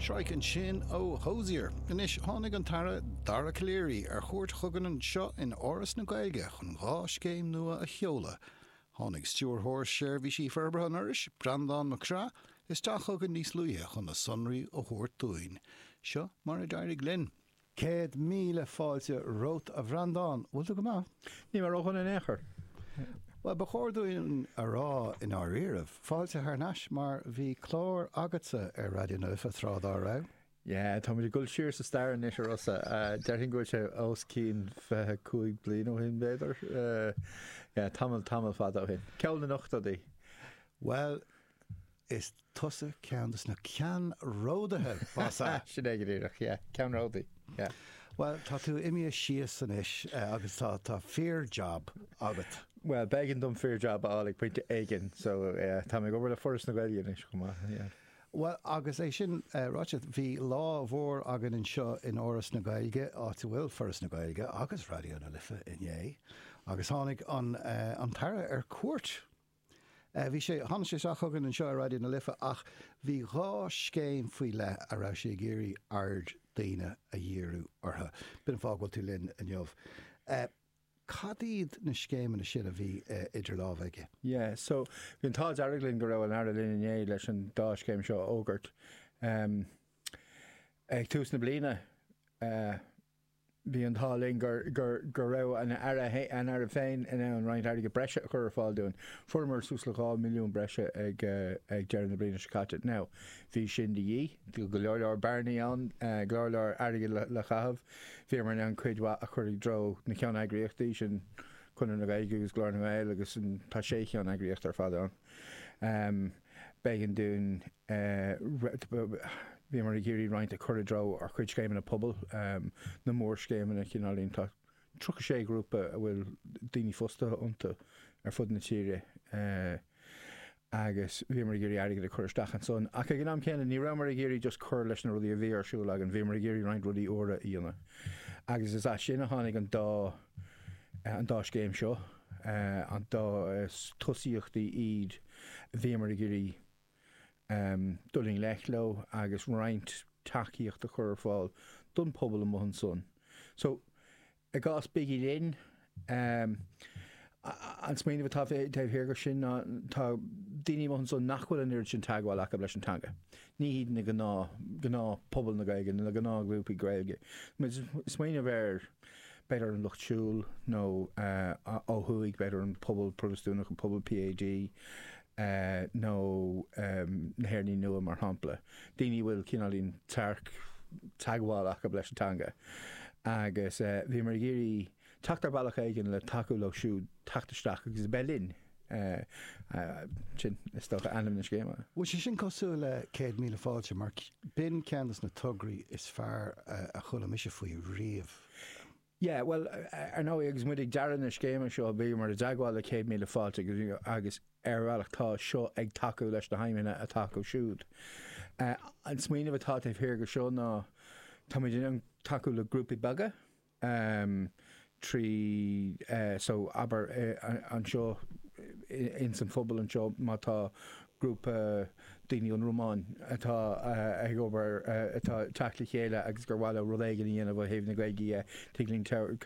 Shrike ansin ó Hozier. Anois, tháinig an tAire Dara Calleary ar chuairt chugainn anseo in Áras na Gaeilge chun dhá scéim nua a sheoladh. Tháinig Stiúrthóir Seirbhísí Forbartha an Fhorais, Breandán Mac Craith, isteach chugainn níos luaithe chun na sonraí a thabhairt dúinn. Seo mar a d'éirigh linn. Céad míle fáilte romhat, a Bhreandán. Bhfuil tú go maith? Níl mé ródhona in aon chor. Bhuel, ba chóir dúinn a rá, i ndáiríribh, fáilte thar n-ais, mar bhí clár agatsa ar Raidió na Life tráth dá raibh. Yeah, táimid ag dul siar sa stair anois, a Rossa. Déarfainn go bhfuil sé os cionn fiche cúig bliain ó shin, b'fhéidir? Yeah, tamall, tamall fada ó shin. Ceol na n-ochtóidí. Bhuel, Is tusa ceann de na ceannródaithe, mar sin! Sin é go díreach, yeah. Ceannródaí, yeah. Bhuel, tá tú imithe suas anois agus tá fíor-jab agat. Bhuel, b'éigean dom fíor-jab a fháil ag pointe éigin, so táim ag obair le Foras na Gaeilge anois chomh maith, yeah. Bhuel, agus é sin ráite, bhí lá mhór againn anseo in Áras na Gaeilge, áit a bhfuil Foras na Gaeilge agus Raidió na Life, inné, agus tháinig an tAire ar cuairt. Bhí sé, tháinig sé isteach chugainn anseo ar Raidió na Life ach bhí dhá scéim faoi leith a raibh sé ag iarraidh aird daoine a dhíriú orthu. B'in an fáth go bhfuil tú linn inniu. Cad iad na scéimeanna sin a bhí idir lámha aige? Yeah, so, bhí an t-ádh dearg linn go raibh an tAire linn inné leis an dá scéim seo a fhógairt. Ag tús na bliana, Bhí an t-ádh linn go raibh an tAire féin in ann roinnt airgid breise a chur ar fáil dúinn. Fuaireamar suas le dhá mhilliún breise ag deireadh na bliana seo caite. Now, bhí sin de dhíth. Bhí go leor leor bearnaí ann, go leor leor airgid le caitheamh. Bhíomar in ann cuid mhaith a chur i dtreo na ceann-eagraíochtaí, sin Conradh na Gaeilge agus Glór na nGael agus tá sé cheann-eagraíocht ar fad ann. B'éigean dúinn, bhíomar ag iarraidh roinnt a chur i dtreo ár gcuid scéimeanna pobail, na mórscéimeanna cineáilín, tá tríocha sé ghrúpa a bhfuil daoine fostaithe iontu ar fud na tíre agus bhíomar ag iarraidh airgead a chur isteach ansan ach ag an am céanna ní rabhamar ag iarraidh just cur leis na rudaí a bhí ar siúl againn, bhíomar ag iarraidh roinnt rudaí úra a dhéanamh agus is as sin a tháinig an dá, an dá scéim seo. yeah, dhá, is tosaíochtaí iad a bhíomar ag iarraidh dul i ngleic leo agus roinnt tacaíocht a chur ar fáil don pobal amuigh ansan. So, i gcás Bígí Linn, an smaoineamh atá taobh thiar de sin ná tá daoine amuigh ansan nach bhfuil an oiread sin teagmháil acu leis an teanga. Ní hiad na gnáth, gnáth pobal na Gaeilge nó na gnáth ghrúpaí Gaeilge. Smaoineamh ar b'fhéidir an lucht siúil nó ó thuaidh b'fhéidir an pobal Protastúnach, an pobal PAD nó na hÉireannaigh Nua mar shampla, daoine a bhfuil cineáilín tearc teagmháil acu leis an teanga agus bhíomar ag iarraidh teacht ar bhealach éigin le tacú leo siúd teacht isteach agus a bheith linn. Sin, is dócha, ainm na scéime. Bhfuil sé sin cosúil le Céad Míle Fáilte? Mar b'in ceann de na tograí is fearr a chuala mise faoi riamh. Yeah, bhuel, ar ndóigh, agus muid ag dearadh na scéime seo, bhíomar i dteagmháil le Céad Míle Fáilte agus, ar bhealach, tá seo ag tacú leis na haidhmeanna atá acu siúd. An smaoineamh atá taobh thiar de seo ná, táimid in ann tacú le grúpaí beaga, amh trí so abair anseo ins an phobal anseo má tá grúpa daoine ón Rúmáin atá ag obair atá teacht le chéile agus gur mhaith leo rud éigin a dhéanamh ó thaobh na Gaeilge dhe tig linn